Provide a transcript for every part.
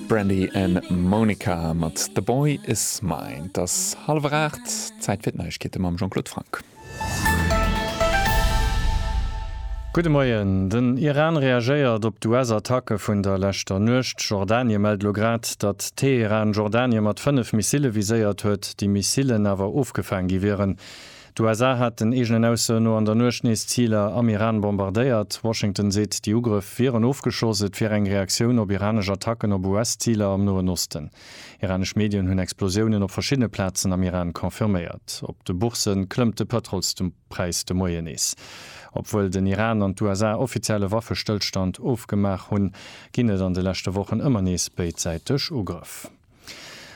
Brandy an Monica mat The Boy is Mine. Et ass hallwer 8, Zäit fir d'Neiegkeete mam Jean-Claude Franck. Gudde Moien. Den Iran reagéiert op d'US-Attacke vun der leschter Nuecht. Jordanie mellt elo grad, datt Teheran Jordanie mat 5 Missille viséiert huet, déi Missillen awer ofgefaang gi wieren. D'USA haten eegenen Aussoen no an der Nuecht nees Ziler am Iran bombardéiert. Washington seet, déi Ugrëff wieren ofgeschoss, et wier eng Reaktioun op iranesch Attacken op US-Ziler am Noen Osten. Iranesch Medien hunn Explosiounen op verschiddene Plazen am Iran confirméiert. Op de Boursë klëmmt de Pëtrolspräis de Moien nees. Obwuel den Iran an d'USA offiziell e Waffestëllstand ofgemaach hunn, ginn et an de leschte Wochen ëmmer nees béidsäiteg Ugrëff.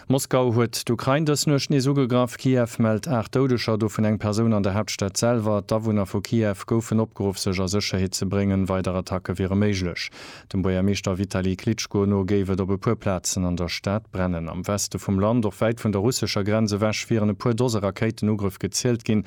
Moskau huet d'Ukrain dës Nuecht nees ugegraff. Kiew mellt 8 Doudeger, dovun eng Persoun an der Haaptstad selwer. D'Awunner vu Kiew goufen opgeruff, sech a Sécherheet ze bréngen. Weider Attacke wiere méiglech. Dem Buergermeeschter Vitali Klitschko no géif et op e puer Plazen an der Stad brennen. Am Weste vum Land, och wäit vun der russescher Grenz ewech, wieren e puer Dose Rakéitenugrëff gezielt ginn.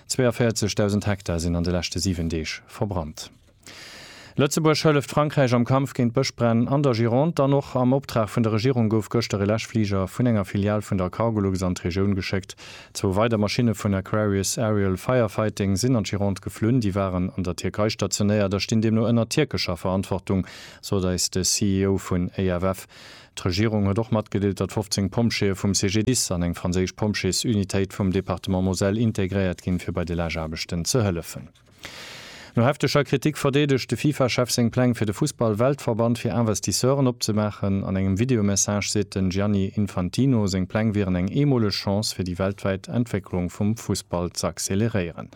42.000 Hektar sinn an de leschte 7 Deeg verbrannt. Lëtzebuerg hëlleft Frankräich am Kampf géint Bëschbränn an der Gironde an och am Optrag vun der Regierung gouf gëschter e Läschfliger vun enger Filial vun der Cargolux an d'Regioun geschéckt. Zwou weider Maschinne vun Aquarius Aerial Firefighting sinn an d'Gironde geflunn. Déi waren an der Tierkei stationéiert a stinn deemno ënner tierkescher Verantwortung, sot eis de CEO vun EFF. D'Regierung huet och matgedeelt, datt 15 Pompjeeë vum CGDIS an eng franséisch Pompjeesunitéit vum Departement Moselle integréiert ginn, fir bei de Läschaarbechten ze hëllefen. No hefteger Kritik verdeedegt de FIFA-Chef seng Pläng fir de Fussball-Weltverband fir Investisseuren opzemaachen. An engem Videomessage seet den Gianni Infantino, seng Pläng wieren eng eemoleg Chance fir déi weltwäit Entwécklung vum Fussball z'acceleréieren.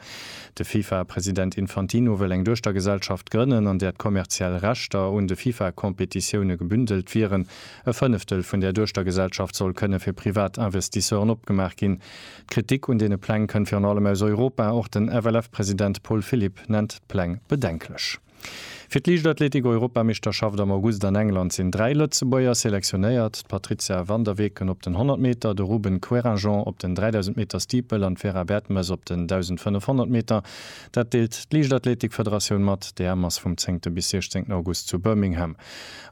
De FIFA-President Infantino wëll eng Duechtergesellschaft grënnen, an där d'kommerziell Rechter un de FIFA-Competitioune gebündelt wieren. E Fënneftel vun där Duechtergesellschaft soll kënne fir privat Investisseuren opgemaach ginn. D'Kritik un deene Pläng kënnt virun allem aus Europa. Och den FLF-President Paul Philipp nennt d'Pläng bedenklech. Fir d'Liichtathletik-Europameeschterschaft am August an England sinn dräi Lëtzebuerger selektionéiert, d'Patrizia van der Weken op den 100 Meter, de Ruben Querinjean op den 3000 Meter Steeple an d'Vera Bertemes op den 1500 Meter. Dat deelt d'Liichtathletik-Federatioun mat. D'EM ass vum zéngte bis siechzéngten August zu Birmingham.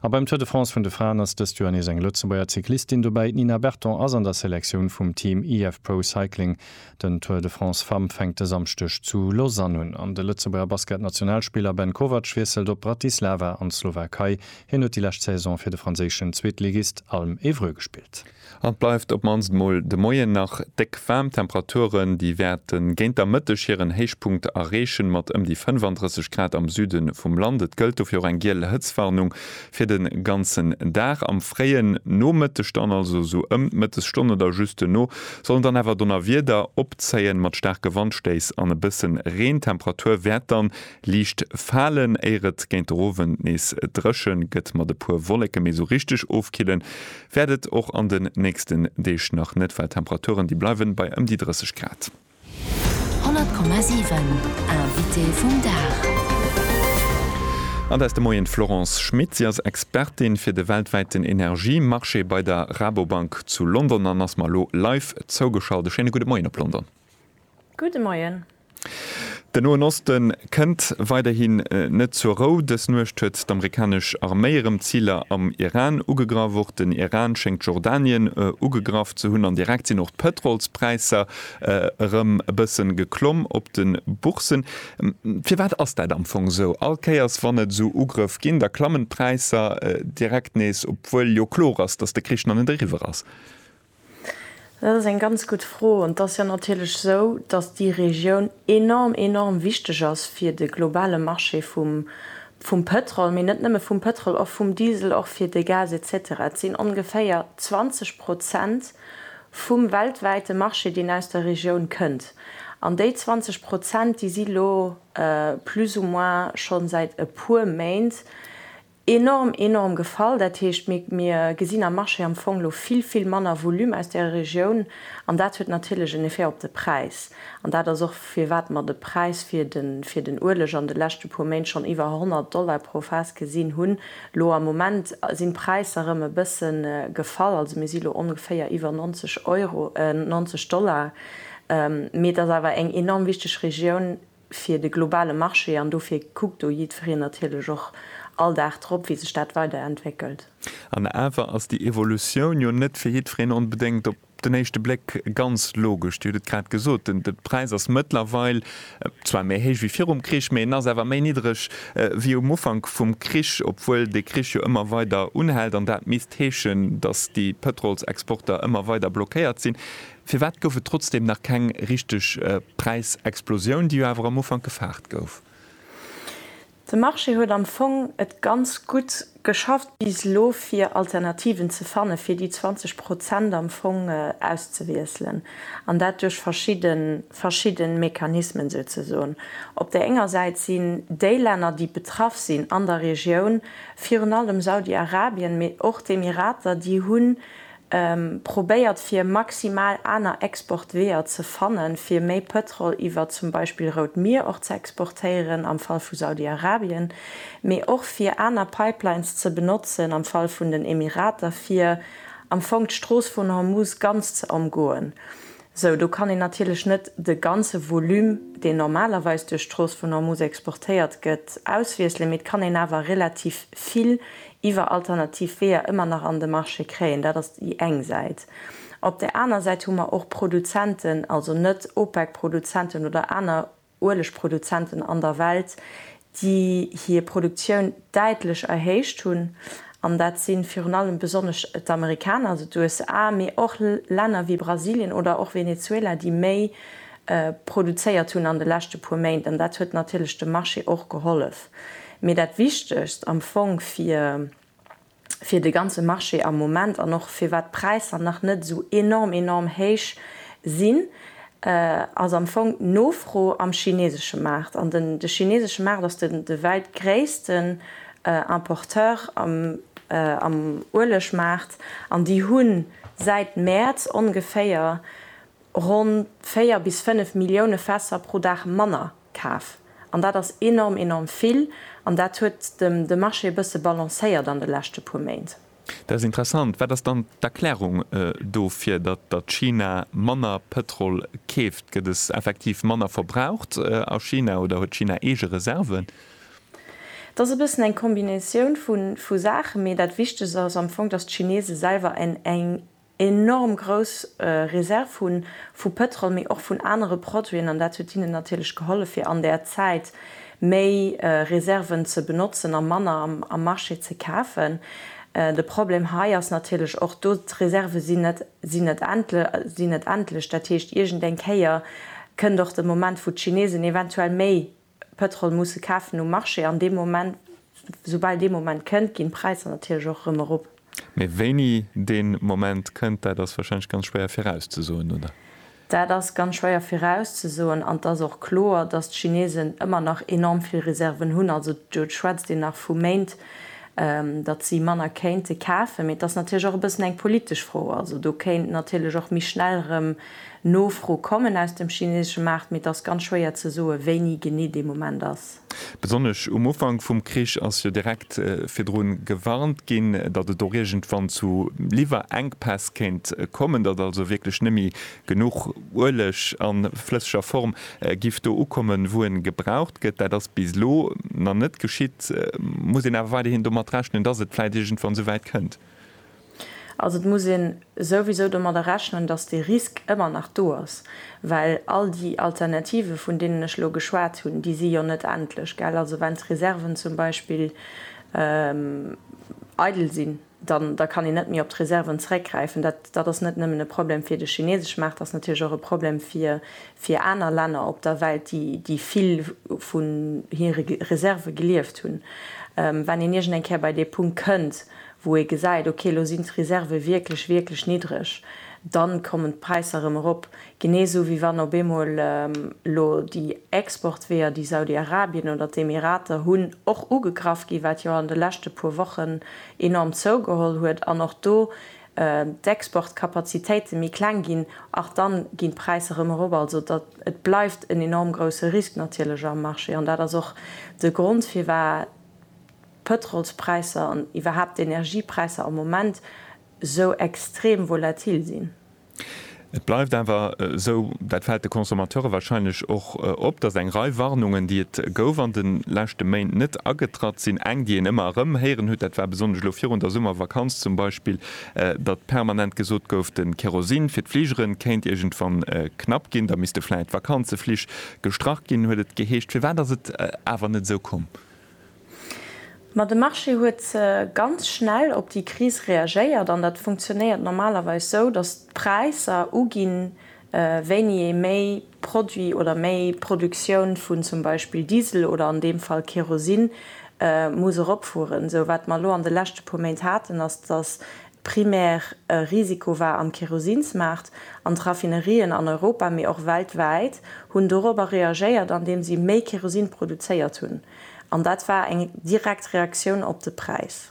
A beim Tour de France vun de Fraen ass dëst Joer nees eng Lëtzebuerger Cyclistin dobäi, d'Nina Berton ass an der Selektioun vum Team IF Pro Cycling. Den Tour de France Femmes fänkt de Samschdeg zu Lausanne un an de Lëtzebuerger Basket-Nationalspiller Ben Kovac wiesselt op Bratislava an d'Slowakei. Hien huet déi lescht Saison fir de franséischen Zweetligist Alm Évreux gespillt. An et bleift op mannst mol de Moien nach déck waarm. Temperaturen déi wäerte géint der Mëtteg hiren Héichpunkt erreechen, mat ëm déi 35 Grad am Süde vum Land. Et gëllt dofir och eng giel Hëtzwarnung Fir den ganzen Dag, am fréien Nomëtteg dann, also esou ëm d'Mëttesstonn oder just duerno, sollen dann awer Donnerwieder opzéien, mat staarke Wandstéiss an e bëssen Reen. D'Temperatur wäert dann liicht falen, éier et géint der Owend nees drëchen gëtt mat e puer Wolleken. Mee esou richteg ofkillen wäert et och an den nächsten Deeg nach net, well d'Temperaturen déi bleiwen bei ëm déi 30 Grad. 100,7 Invité vum Dag. An der ass de Moien d'Florence Schmit. Si ass Expertin fir de weltwäiten Energiemarché bei der Rabobank zu London an ass mer elo live zougeschalt. E schéine gudde Moien op London. Gudde Moien. Den Noen Oste kënnt weiderhi net zur Rou. Dës Nuecht huet d'amerikanesch Arméi erëm Ziler am Iran ugegraff. Och den Iran schéngt Jordanien ugegraff ze hunn an direkt sinn och d'Pëtrolspräisser Erëm e bëssen geklomm op den Boursen. Firwat ass dat am Fong esou? All Kéiers wann et esou Ugrëff ginn, da klammen d'Präisser direkt nees, obwuel jo kloer ass, dass de Krich nach net eriwwer ass. Dat ass eng ganz gutt Fro. An et ass jo natierlech esou, dass déi Regioun enorm, enorm wichteg ass fir de globale Marché vum, vum Pétrol, mee net nëmme vum Pétrol, och vum Diesel, och fir de Gas et cetera. Et sinn ongeféier 20 Prozent vum weltwäite Marché, deen aus der Regioun kënnt. An déi 20 Prozent, déi si lo plus ou moins scho säit e puer Méint enorm, enorm gefall. Dat heescht, mir gesinn am Marché am Fong lo vill, vill manner Volume aus där Regioun. An dat huet natierlech en Effet op de Präis. An dat ass och, firwat mer de Präis fir den Ueleg an de leschte puer Méint schonn iwwer 100 Dollar pro Faass gesinn hunn, Lo am Moment sinn d'Präisser rëm e bësse gefall, also mir si lo ongeféier iwwer 90 Euro, 90 Dollar, mee et ass awer eng enorm wichteg Regioun fir de globale Marché an dofir kuckt do jiddwereen natierlech och all Dag drop, wéi sech dat weiderentwéckelt. An awer ass déi Evolutioun jo net fir jiddwereen onbedéngt op Op den éischte Bléck ganz logesch, Dir hutt et grad gesot, den Präis ass mëttlerweil zwar méi héich wéi virum Krich, mee en ass awer méi niddreg wéi um Ufank vum Krich, obwuel de Krich jo ëmmer weider unhält an dat misst heeschen, datt déi Pëtrolsexporter ëmmer weider blockéiert sinn. Firwat gouf et trotzdeem nach keng richteg Präisexplosioun, déi jo awer am Ufank gefaart gouf? De Marché huet am Fong et ganz gutt geschafft bis elo fir Alternativen ze fanne fir déi 20 Prozent am Fong auszewiesselen, an dat duerch verschidde verschidde Mechanismen souzesoen. Op där enger Säit sinn déi Länner déi betraff sinn an der Regioun, virun allem Saudi-Arabien, mee och d'Emirater, déi hunn Probéiert fir maximal aner Exportweeër ze fannen, fir méi Pëtrol iwwer zum Beispill Rout Mier och ze exportéieren am Fall vu Saudi-Arabien, mee och fir aner Pipelines ze benotzen am Fall vun den Emirater, fir am Fong d'Strooss vun Hormuz ganz ze ëmgoen. Sou, do kann een natierlech net de ganze Volume, deen normalerweis duerch d'Strooss vun Ormuz exportéiert gëtt, auswiesselen, mee et kann een awer relativ vill iwwer alternativ Weeër ëmmer nach an de Marché kréien. Dat ass déi eng Säit. Op där aner Säit hu mer och Produzenten, also net OPEC-Produzenten oder aner Uelegproduzenten an der Welt, déi hir Produktioun däitlech erhéicht hunn. An dat si virun allem besonnesch d'Amerikaner, also d'USA, mee och Länner wéi Brasilien oder och Venezuela, déi méi produzéiert hunn an de leschte puer Méint. An dat huet natierlech dem Marché och gehollef. Mee dat Wichtegst am Fong, fir fir de ganze Marché am Moment an och firwat d'Präisser nach net esou enorm, enorm héich sinn, ass am Fong d'Nofro am chinesesche Maart. An de chinesesche Maart ass de wäit gréissten Importeur am Uelegmaart an déi hu säit Mäerz ongeféier ronn 4 bis 5 Millioune Fässer pro Dag manner. Kaf. An dat ass enorm, enorm vill. An dat huet de Marché e bësse balancéiert an de leschte puer Méint. Dat ass interessant. Wat ass dann d'Erklärung dofir, datt China manner Pëtrol keeft? Gëtt es effektiv manner verbraucht a China oder huet China eege Reserven? Et ass e bëssen eng Kombinatioun vu Saachen, mee dat Wichtegst ass am Fong, datt d'Chinese selwer eng enorm grouss Reserv hu vu Pëtrol, mee och vun anere Produiten, an dat huet hinnen natierlech gehollef, fir an där Zäit méi Reserven ze benotzen a manner am Marché ze kafen. De Problem hei ass natierlech och do, d'Reserve sinn net, sinn net endlech. Dat heescht, iergendeng Kéier kënnt och de Moment, wou d'Chinesen eventuell méi Pëtrol musse kafen um Marché an dee Moment, soubal dee Moment kënnt, ginn d'Präisser natierlech och erëm erop. Mee wéini dee Moment kënnt, dat ass warscheinlech ganz schwéier virauszesoen, oder? Dat ass ganz schwéier virauszesoen an et ass och kloer, datt d'Chinesen ëmmer nach enorm vill Reserven hunn. Also do schwätzt een nach vu Méint, datt si manner kéinte kafen. Mee et ass natierlech och e bëssen eng politesch Fro. Also do kéint natierlech och méi schnell erëm Nofro kommen aus dem chinesesche Maart, mee et ass ganz schwéier ze soe wéini genee dee Moment ass. Besonnesch um Ufank vum Krich ass jo direkt virdru gewarnt ginn, datt et och iergendwann zu Liwwerengpäss kéint kommen, datt also wierklech net méi genuch Ueleg a flësseger Form giff do ukommen, wou e gebraucht gëtt. Dat ass bis elo nach net geschitt. Muss een awer weiderhin domat rechnen, datt et vläicht iergendwann esou wäit kënnt? Also et muss een souwisou domadder rechnen, datt dee Risk ëmmer nach do ass, well all déi Alternative vun deenen ech elo geschwat hunn, déi si jo net endlech, gell. Also wann d'Reserven zum Beispill eidel sinn, dann da kann een net méi op d'Reserven zeréckgräifen. Dat dat ass net nëmmen e Problem fir de chinesesch Maart, dat ass natierlech och e Problem fir fir aner Länner op der Welt, déi déi vill vun hire Reserve gelieft hunn. Wann een iergendeng Kéier bei dee Punkt kënnt, wou ee gesäit, ok, elo sinn d'Reserve wierklech, wierklech niddreg, dann kommen d'Präisser erëm erop. Genee esou wéi wann op eemol elo déi Exportweeër, déi Saudi-Arabien oder d'Emirater hunn, och ugegraff ginn, wat jo an de leschte puer Wochen enorm zougeholl huet an och do d'Exportkapazitéite méi kleng ginn, ach dann ginn d'Präisser erëm erop. Also dat, et bleift en enorm grousse Risk natierlech am Marché an dat ass och de Grond firwat, d'Pëtrolspräisser an iwwerhaapt d'Energiepräisser am Moment esou extrem volatil sinn. Et bleift awer esou, dat fält de Consommateure warscheinlech och op, datt eng Rei Warnungen, déi et gouf an de leschte Méint, net agetratt sinn. Eng, déi een ëmmer erëm héieren huet, dat war besonnesch elo virun der Summervakanz zum Beispill, datt permanent gesot gouf, de Kerosin fir d'Fligere kéint iergendwann knapp ginn, da misste vläit d'Vakanzeflich gestrach ginn, huet et geheescht. Firwat ass et awer net esou komm? Ma de Marché huet ganz schnell op déi Kris reagéiert an dat funktionéiert normalerweis sou, datt d'Präisser uginn, wéini ee méi Produit oder méi Produktioun vun zum Beispill Diesel oder an deem Fall Kerosin muss eropfueren. Sou wat mer elo an de leschte puer Méint haten, ass datt Primär e Risiko war am Kerosinsmaart, an d'Raffinerien an Europa, mee och weltwäit, hunn dorobber reagéiert, andeem si méi Kerosin produzéiert hunn. An dat war eng direkt Reaktioun op de Präis.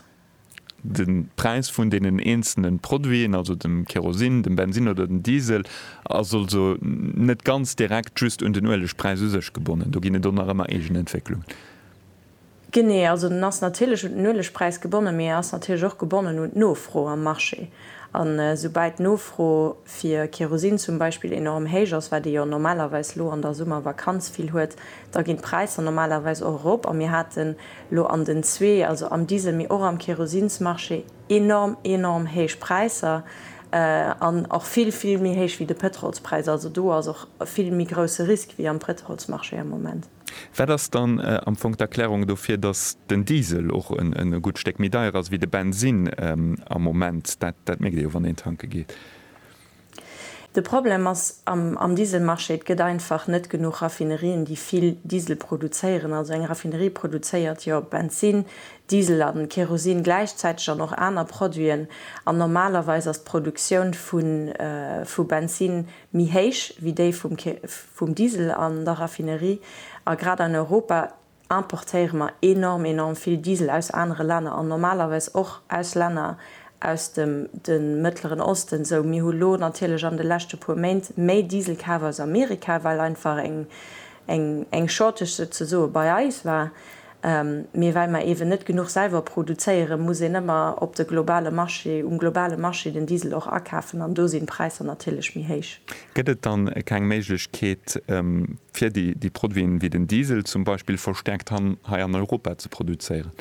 De Präis vun deenen eenzelne Produiten, also dem Kerosin, dem Bensin oder dem Diesel, ass also net ganz direkt just un den Uelegpräis u sech gebonnen. Do ginn et och nach ëmmer eegen Entwécklungen. Genee, also den ass natierlech un den Uelegpräis gebonnen, mee e ass natierlech och gebonnen un d'Nofro am Marché. An esoubäi d'Nofro fir Kerosin zum Beispill enorm héich ass, wat ee jo normalerweis elo an der Summervakanz vill huet, da ginn d'Präisser normalerweis och erop. A mir haten elo an den zwee, also am Diesel, mee och am Kerosinsmarché enorm, enorm héich Präisser an och vill, vill méi héich wéi de Pétrolspräis. Also do ass och e vill méi grousse Risk wéi am Pétrolsmarché am Moment. Wat ass dann am Fong d'Erklärung dofir, datt den Diesel och e gutt Stéck méi deier ass wéi de Bensinn am Moment? Dat mierkt ee jo, wann een tanke geet. De Problem ass am Dieselmarché, Et gëtt einfach net genuch Raffinerien, déi vill Diesel produzéieren. Also eng Raffinerie produzéiert jo Bensinn, Diesel a Kerosin gläichzäiteg an och aner Produiten. An normalerweis ass d'Produktioun vu Bensinn, méi héich wéi déi vum Diesel an der Raffinerie, a grad an Europa importéiere mer enorm, enorm vill Diesel aus anere Länner an normalerweis och aus Länner aus dem de Mëttleren Osten. Sou mir hu lo natierlech an de leschte puer Méint méi Diesel kaf aus Amerika, well einfach eng Shortage souzesoe bei eis war. Mee well mer eeben net genuch selwer produzéieren, muss een ëmmer op de globale Marché, um globale Marché den Diesel och akafen an do sinn d'Präisser natierlech méi héich. Gëtt et dann keng Méiglechkeet fir déi Produiten, wéi den Diesel zum Beispill, verstärkt hei an Europa ze produzéieren?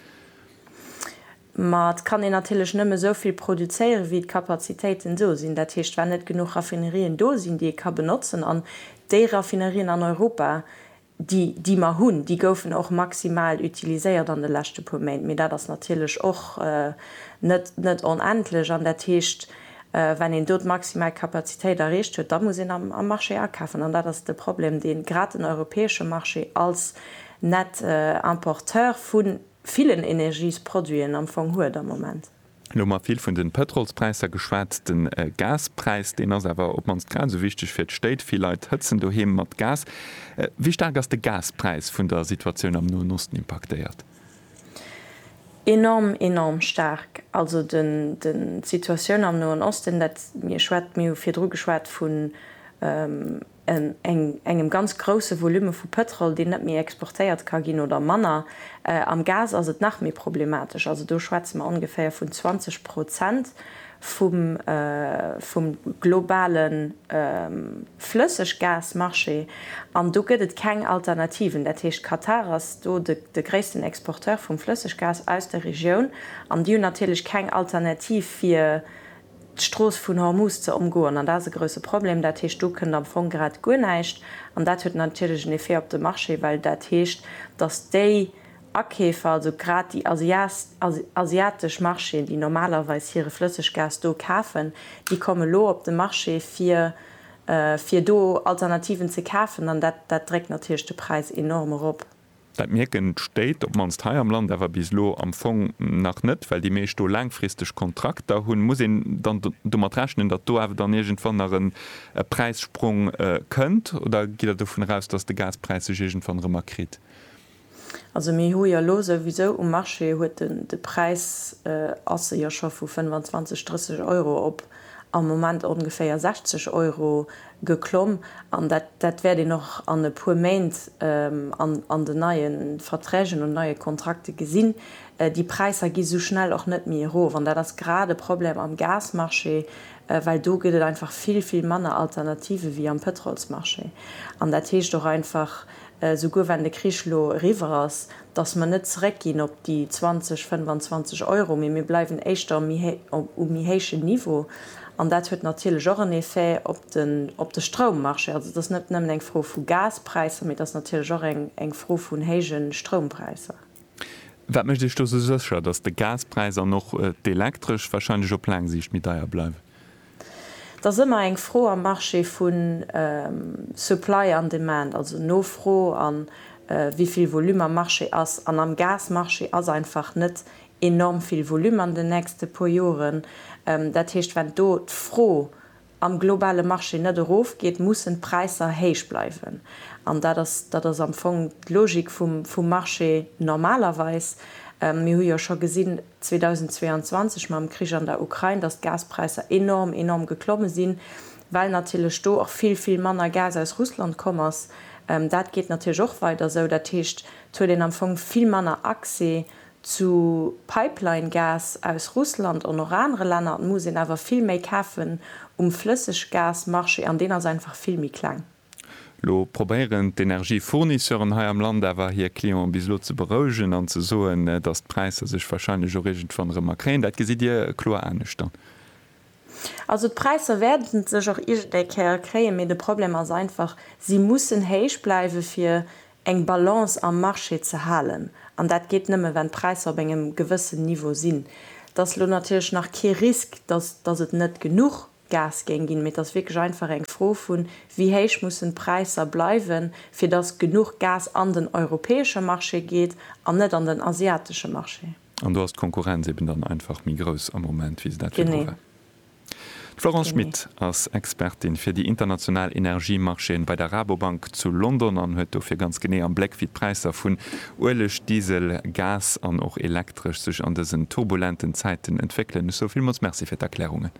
Ma et kann een natierlech nëmme esou vill produzéieren, wéi d'Kapazitéiten do sinn. Dat heescht, well net genuch Raffinerien do sinn, déi ee ka benotzen an déi Raffinerien an Europa déi, déi mer hunn, déi goufen och maximal utiliséiert an de leschte puer Méint, mee dat ass natierlech och net, net onendlech. An dat heescht, wann een do d'maximal Kapazitéit erreecht huet, da muss een am, am Marché akafen. An dat ass de Problem, dee grad den europäesche Marché als Net-Importeur vu villen Energiesproduiten am Fong huet am Moment. Lo hu mer vill vun de Pëtrolspräisser geschwat. De Gaspräis, deen ass awer op d'mannst grad esou wichteg fir d'Stéit. Vill Leit hëtzen doheem mat Gas. Wéi staark ass de Gaspräis vun der Situatioun am Noen Osten impaktéiert? Enorm, enorm staark. Also d'Situatioun am Noen Osten, mir hu virdru geschwat vun. engem ganz grousse Volume vu Pëtrol, deen net méi exportéiert ka ginn oder manner. Am Gas ass et nach méi problematesch, also do schwätze mer ongeféier vun 20 Prozent vum globale Flësseggasmarché. An do gëtt et keng Alternativen. Dat heescht, Katar ass do de gréissten Exporteur vum Flësseggas aus der Regioun an déi hunn natierlech keng Alternativ fir, d'Strooss vun Hormuz ze ëmgoen. An dat ass e grousse Problem. Dat heescht, do kënnt am Fong grad guer näischt. An dat huet natierlech en Effet op de Marché, well dat heescht, datt déi Akeefer, also grad déi asiatesch Marchéen, déi normalerweis hire Flësseggas do kafen, déi komme lo op de Marché, fir fir do Alternativen ze kafen. An dat dréckt natierlech de Präis enorm erop. Dat mierken d'Stéit, op d'mannst hei am Land, awer bis elo am Fong nach net, well déi meescht do laangfristeg Kontrakter hunn. Muss een dann domat rechnen, datt do awer dann iergendwann nach e Präissprong kënnt? Oder gitt Der dovun eraus, datt de Gaspräis sech iergendwann erëm akritt? Also mir hu jo elo souwisou um Marché huet en, de Präis ass e jo scho vu 25, 30 Euro op am Moment ongeféier 60 Euro geklomm an dat dat wäert een och an e puer Méint an an den neie Verträgen und neue Kontrakte gesinn. Déi Präisser gi sou schnell och net méi erof an dat ass grad e Problem am Gasmarché, well do gëtt et einfach vill vill manner Alternative wéi am Pëtrolsmarché an dat heescht och einfach, souguer wann de Krich elo eriwwer ass, datt mer net zeréckginn op déi 20, 25 Euro, mee mir bleiwen éischter um méi héichen Niveau. An dat huet natierlech och en Effet op de Stroummarché. Also et ass net nëmmen eng Fro vu Gaspräisser, mee et ass natierlech och eng Fro vun héije Stroumpräisser. Wat mécht Iech do esou sécher, datt de Gaspräis an och d'Elektresch warscheinlech op laang Siicht méi deier bleiwen? Et ass ëmmer eng Fro am Marché vu Supply an Demand, also Nofro a wéi vill Volume am Marché ass. An am Gasmarché ass einfach net enorm vill Volume an den nächste puer Joren. Dat heescht, wenn do d'Fro am globale Marché net erofgeet, mussen d'Präisser héich bleiwen. An dat ass, dat ass am Fong d'Logik vum Marché normalerweis. Mir hu jo scho gesinn, 2022 mam Krich an der Ukrain, dass d'Gaspräisser enorm, enorm geklomme sinn, well natierlech do och vill, vill manner Gas aus Russland komm ass. Dat geet natierlech och weider esou. Dat heescht, et huet een am Fong vill manner Accès zu Pipeline-Gas aus Russland an och anere Länner. Et muss een awer vill méi kafen um Flësseggasmarché an deen ass einfach vill méi kleng. Lo probéieren d'Energiefournisseuren hei am Land awer hir Clienten bis elo ze berouegen an ze soen, dass d'Präisser sech wahrscheinlech och iergendwann erëm akréien. Dat gesitt Dir kloer anescht dann? Also d'Präisser wäerten sech och iergend eng Kéier akréien, mee de Problem ass einfach, si mussen héich bleiwen, fir eng Balance am Marché ze halen. An dat geet nëmme, wann d'Präisser op engem gewëssen Niveau sinn. Et ass elo natierlech nach kee Risk, dass et net genuch Gas géing ginn, mee et ass wierklech einfach eng Fro vu wéi héich mussen d'Präisser bleiwen, fir datt genuch Gas an den europäesche Marché geet an net an den asiatesche Marché. An do ass d'Konkurrenz eben dann einfach méi grouss am Moment, wéi se dat virdru war. D'Florence Schmit ass Expertin fir déi international Energiemarchéen bei der Rabobank zu London an huet dofir ganz genee am Bléck, wéi d'Präisser vun Ueleg, Diesel, Gas an och Elektresch sech an dësen turbulenten Zäiten entwéckelen. Ech soe villmools Merci fir d'Erklärungen.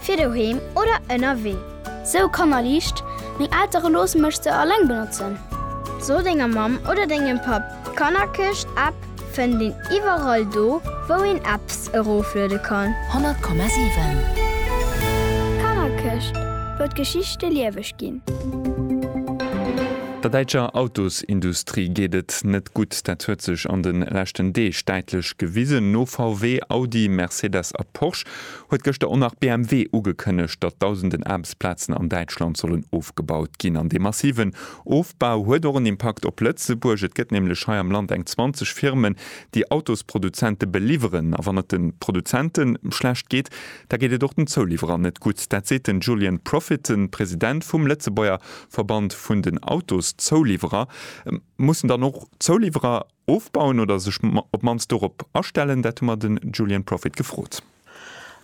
fir doheem oder ënnerwee. Sou Kanner liicht, meng Eltere loosse mech se alleng benotzen. So denger Mamm oder dengem Papp, d'Kannerkëscht App fënnt een iwwerall do wou een Apps erofluede kann. 100,7. D'Kannerkëscht, wou d'Geschichte lieweg ginn. Der däitscher Autosindustrie geet et net gutt. Dat huet sech an de leschten Deeg däitlech gewisen. No VW, Audi, Mercedes a Porsche huet gëschter och nach BMW ugekënnegt, datt dausenden Aarbechtsplazen an Däitschland sollen ofgebaut ginn. An dee massiven Ofbau huet och en Impakt op Lëtzebuerg. Et gëtt nämlech hei am Land eng 20 Firmen, déi Autosproduzente beliwweren. A wann et de Produzente schlecht geet, da geet et och den Zouliwwerer net gutt. Dat seet den Julien Profitton, President vum Lëtzebuerger Verband vun den Autoszouliwwerer. Mussen dann och d'Zouliwwerer Ofbauen oder sech op mannst dorop astellen? Dat hu mer de Julian Profit gefrot.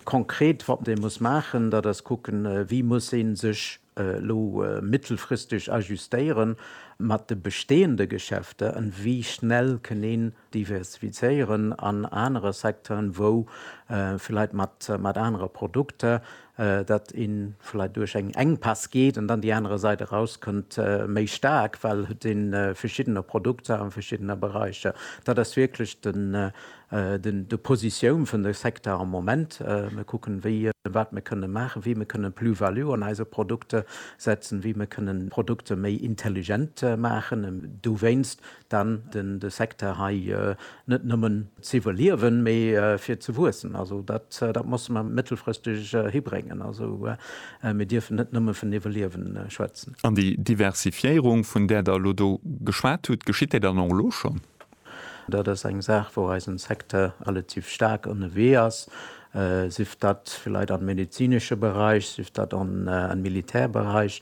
Konkret wat ee muss maachen, dat ass kucken, wéi muss ee sech elo mittelfristeg ajustéiere mat de bestehende Geschäfter an wéi schnell kënn een diversifizéieren an anere Secteuren, wou villäit mat anere Produkter, dat ee vläit duerch eng Enkpäss geet an dann déi anerer Sait erauskënnt méi staark, well et si verschiddener Produkter a verschiddener Beräicher. Dat ass wierklech de Positioun vun de Secteur am Moment. Mir kucken, wéi a wat mir kënnen maachen, wéi mir kënnen Plus-value an eise Produkter setzen, wéi mir kënnen Produkter méi intelligent maachen. Dowéinst dann den de Secteur hei net nëmmen ze iwwerliewen, mee fir ze wuessen. Also dat dat musse mer mëttelfristeg hibréngen. Also mir dierfen net nëmme vun iwwerliewen schwätzen. An déi Diversifiéierung, vun där Der elo do geschwat hutt, geschitt déi dann och elo schonn? Dat ass eng Saach, wou eisen Secteur relativ staark ënnerwee ass. sief dat villäit am medezinesche Beräich, sief dat am Militärberäich,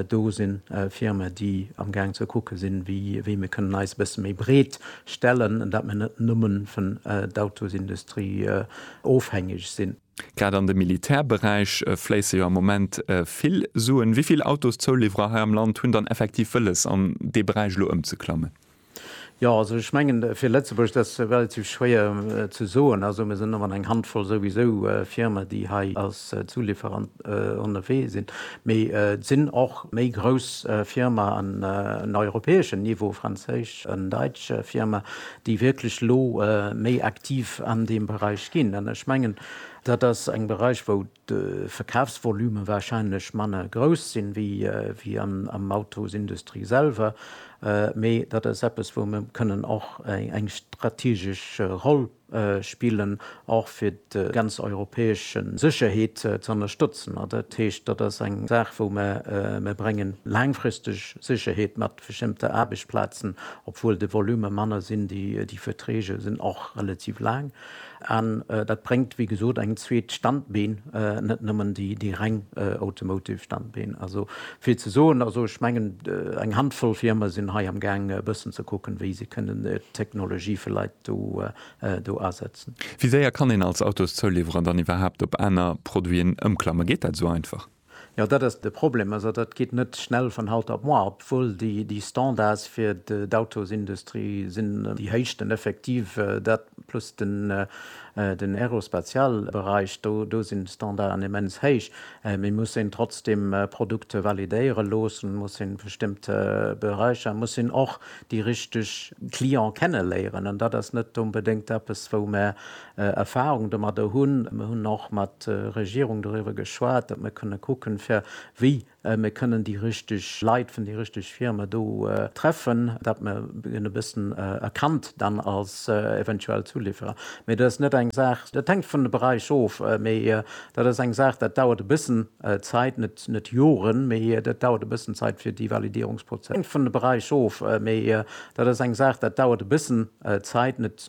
do si Firmen, déi amgaang ze kucke sinn, wéi mir kënnen eis e bësse méi breet stellen, dat mir net nëmme vun d'Autosindustrie ofhängeg sinn. Grad an de Militärberäich fléisse jo am Moment vill Suen. Wéi vill Autoszouliwwerer hei am Land hunn dann effektiv wëlles, an dee Beräich elo ëmzeklammen? Jo, also ech mengen, fir Lëtzebuerg, dat ass relativ schwéier ze soen. Also mir sinn ëmmer eng Handvoll souwisou Firmen, déi hei als Zulieferant ënnerwee sinn. Mee et sinn och méi grouss Firmaen, en europäeschen Niveau, franséisch an däitsch Firmaen, déi wierklech elo méi aktiv an deem Beräich ginn. An ech mengen, dat ass eng Beräich, wou de Verkafsvolume wahrscheinlech manner grouss sinn, wéi am Autosindustrie selwer, mee dat ass eppes, wou mer kënnen och eng strategesch Roll spillen, och fir déi ganz europäesch Sécherheet ze ënnerstëtzen. Dat heescht, dat ass eng Saach, wou mer bréngen laangfristeg Sécherheet mat. bestëmmte Aarbechtsplazen, obwuel de Volume manner sinn, déi Verträge sinn och relativ laang an dat bréngt, wéi gesot, eng zweet Standbeen, net nëmmen déi reng Automotive Standbeen. Also vill ze soen. Also ech mengen, eng Handvoll Firme sinn hei am Gaang e bëssen ze kucken, wéi se kënnen d'Technologie vläit do asetzen. Wéi séier kann een als Autoszouliwwerer dann iwwerhaapt op aner Produiten ëmklammen? Geet dat esou einfach? Jo, dat ass de Problem. Also dat geet net schnell von haut op moar, obwuel déi Standards fir d'Autosindustrie sinn déi héischsten effektiv. Dat plus den Aerospatialbereich, do sinn d'Standarden immens héich. Mee muss een trotzdem Produkte validéiere loossen, muss een bestëmmt Bereicher, muss een och déi richteg Client kenneléieren. An dat ass net onbedéngt eppes, wou mär Erfahrung domadder hunn. Mir hunn och mat Regierung doriwwer geschwat, datt mir kënne kucken, fir wéi mir kënnen déi richtig Leit vun déi richtig Firme do treffen, datt mir en e bëssen erkannt dann als eventuell Zulieferer. Mee dat ass net eng Saach, dat hänkt vun de Beräich of, mee dat ass eng Saach, dat dauert e bëssen Zäit, net Joren, mee dat dauert e bëssen Zäit, fir déi Validierungsprozess. Dat hänkt vun de Beräich of, mee dat ass eng Saach, dat dauert e bëssen Zäit, net.